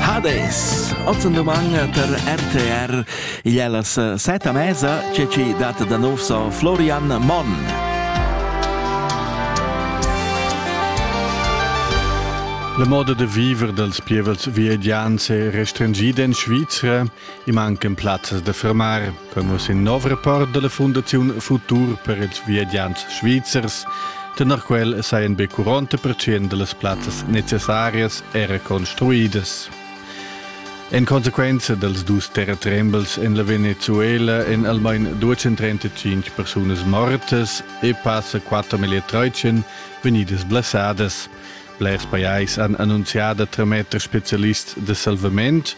Hades, oz en domani per RTR. Igl è las set a mesa che ci dat da nov so Florian Monn. La moda da viver dals pievels viedians è restringida en Svizra I mancan plazas da fermar, come sin nov report della Fondazione Futur per ils viagiants svizzers. Tenor quel sajan be 40% delle plazzas necessarias era construidas. En conseguenza dels dus terratrembels en la Venezuela en almain 235 persones mortas e passa 4.300 venidas blessadas. Blers pajais han annunciado a trametter specialist de salvament,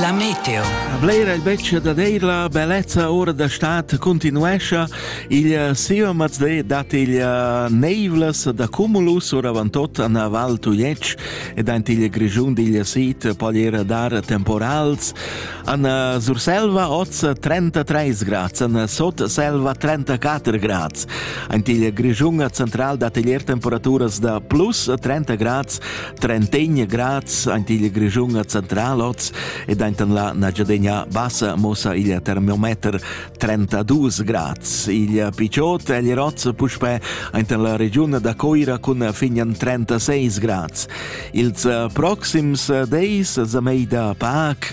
La meteo. Blera il betg da dir la bellezza ora da stat continuescha. Il siva mazde dat il neivlas da cumulus oravantot an Val Tujetsch ed ant il grigiun digl sit pogliera dar temporals. An Surselva oz 33 grads, an Sotselva 34 grads. Ant il grigiun central dat il temperatura da plus 30 grads, trentegna grads ant il Grischun a Central oz ed antan la Nagyadegna bassa mossa il termometer 32 grads. Il picciot el roz puspè antan la regiun da Coira cun finian 36 grads. Ils proxims deis za mei da Pac